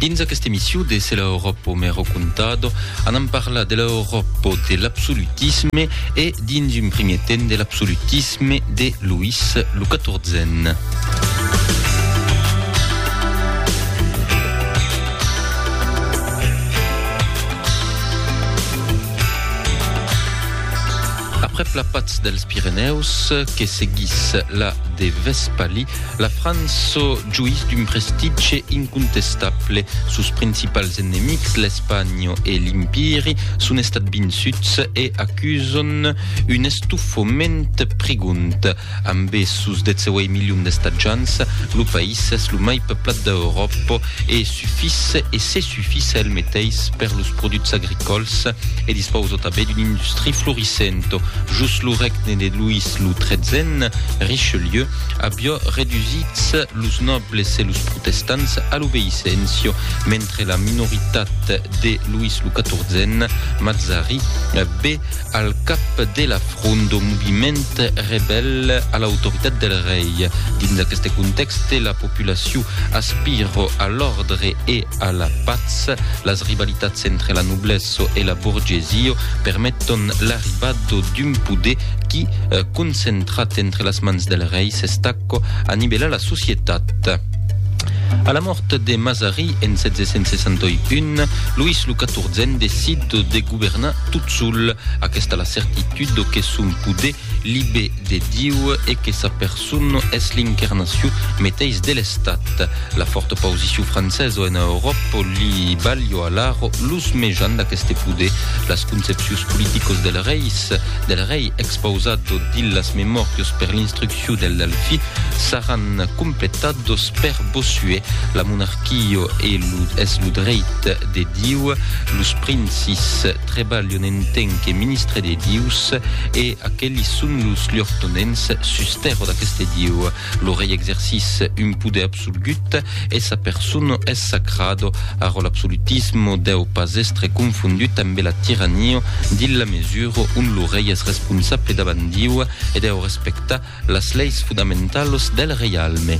Dins aquesta emission de Se l'Europo me ho contado, anam parlar de l'Europo de l'absolutisme e, dins un primier temps, de l'absolutisme de Louis lo XIVen. Aprèp la patz dels Pirenèus, que seguís la de Vespalí, La França joís d'un prestitge incontestable. Sos principals enemics, l'Espanha e l'Impiri, son estat vinsuts e acuson un estofament prigond. Ambe sos 18 milions d'estatjants, lo país es lo mai peuplat d'Euròpa e sufís e se sufís a el meteis per los produchs agricòls e dispausa tanben d'una industria florissenta. Jos lo regne de Louis lo XIII, Richelieu, avió redusits los nòbles e los protestants a l'obeissencio, mentre la minoritat de Luis lo XIVen, Mazzari, be al cap de la front do moviment rebèl a l'autoritat del rei. Dins aqueste contèxte, la populacion aspira a l'òrdre e a la patz. Las rivalitats entre la noblèsso e la borgesia permeton l'arribada d'un poder qui, concentrat entre las mans del rei, s'estaco a nivellar la societat. A la mòrt de Mazari en 1761, Luís lo XIVen decid de governar tot sol. Aquesta la certitud que son poder libé de Diu e que sa persona Son es l'incarnacion meteis de l'Estat. La fòrta pausicion francesa ena Euròpa li balhò alara los mejans d'aqueste poder. Las concepcions politicos del reis, del rei expausat dins las memòrios per l'instruccion del Delfi, saràn completados per Bossuet. La monarquia es lo dreit de Dieu, los princis, Trebalho n'entenque ministre de Dius, e aquelis son los lhortonens sus tèrra d'aqueste Dieu. Lo rei exercis un poder absolgut e sa persona es sacrado. Ara l'absolutisme deu pas estre confondut ambe la tirania dins la mesura ont lo rei es responsable davant Dieu e deu respectar las leis fudamentalas del reialme.